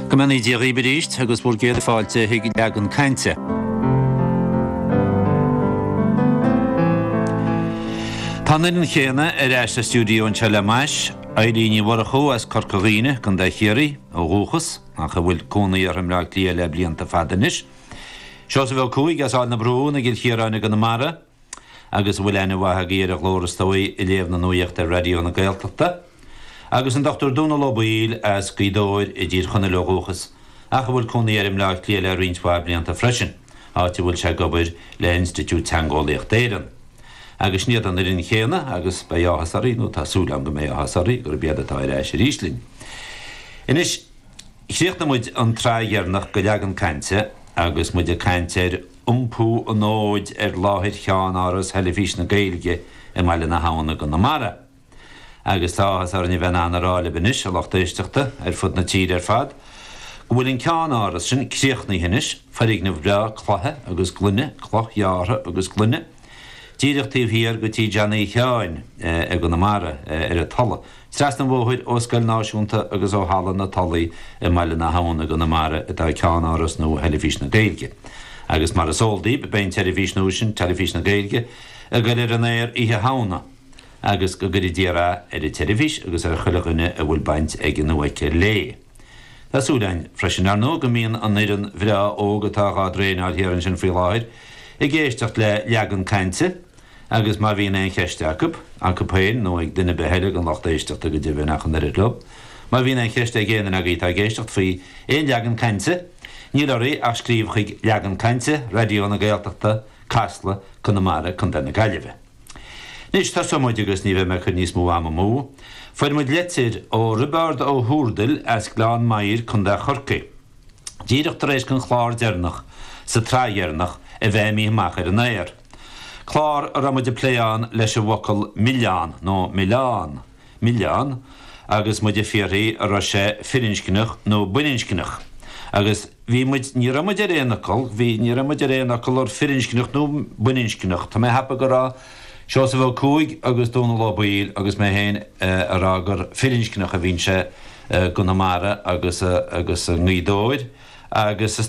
Go mbeannaí Dia dhaoib aríst, agus bhur gcéad fáilte chuig Leagan Cainte. Tá an fhoireann chéanna ar ais sa stiúideo anseo le m'ais, Eibhlín Ní Mhurchú as Corca Dhuibhne, Contae Chiarraí, ó dhúchas, ach a bhfuil cónaí uirthi i mBleá Cliath le blianta fada anois. Seosamh Ó Cuaig as Aill na Brún i gCill Chiaráin i gConamara. agus a bhfuil aithne mhaith agaibh ar a ghlór is dóigh ag léamh na nuaíochta ar Raidió na Gaeltachta, agus an Dr Dónall Ó Baoill as Gaoth Dobhair i dTír Chonaill ó dhúchas ach a bhfuil cónaí air i mBleá Cliath le roinnt mhaith blianta freisin, áit a bhfuil sé ag obair le Institiúid Teangeolaíochta Éireann. Agus sin iad an fhoireann chéanna, agus beidh áthas oraibh, nó tá súil agam go mbeidh áthas oraibh, gurb iad atá ar ais arís linn. Anois, chríochnaigh muid an tsraith dheireanach de Leagan Cainte agus muid ag caint ar iompú an fhóid ar láthair cheannáras Theilifís na Gaeilge i mBaile na hAbhann i gConamara. Agus tá áthas orainn a bheith in ann a rá libh anois, a lucht éisteachta ar fud na tíre ar fad, go bhfuil an ceannáras sin críochnaithe anois, foirgneamh breá cloiche agus gloine, cloch ghearrtha agus gloine, díreach taobh thiar de Tigh Johnny Sheáin i gConamara, ar an Tulaigh. Trasna an bhóthair ó Scoil Náisiúnta agus ó Halla na Tulaí i mBaile na hAbhann i gConamara atá ceannáras nua Theilifís na Gaeilge. Agus mar is eol daoibh, beidh an tseirbhís nua sin, Teilifís na Gaeilge, ag goil ar an aer Oíche Shamhna. Agus go gcuire Dia rath ar an tseirbhís agus ar chuile dhuine a bhfuil baint aige nó aici léi. Tá súil againn, freisin, ar ndóigh, go mbíonn an fhoireann bhreá óg atá dhá dtraenáil thiar ansin faoi láthair ag éisteacht le Leagan Cainte, Agus má bhíonn aon cheist acu, acu féin nó ag duine ar bith eile den lucht éisteachta, go deimhin ach an oiread leo, má bhíonn aon cheist ag éinne agaibh atá ag éisteacht faoi aon leagan cainte, níl oraibh ach scríobh chuig, Leagan Cainte, Raidió na Gaeltachta, Casla, Conamara, Co. na Gaillimhe. Anois, tosóidh muid agus ní bheidh mé ag cur níos mó ama amú. Fuair muid litir ó Roibeárd Ó hÚrdail as Gleann Maghair, Co. Chorcaí, díreach tar éis don chlár deireanach sa tsraith dheireanach a bheith imithe amach ar an aer. clár a raibh muid ag plé ann leis an bhfocal milleán, nó milleán, milleán, agus muid ag fiarthaí an raibh sé firinscneach nó baininscneach. Agus bhí muid, ní raibh muid ar aon fhocal, bhí, ní raibh muid ar aon fhocal ar firinscneach nó baininscneach. Tá mé ag cheapadh go raibh Seosamh Ó Cuaig agus Dónall Ó Baoill agus mé féin ag rá gur firinscneach a bhíonn sé i gConamara agus i nGaoth Dobhair agus is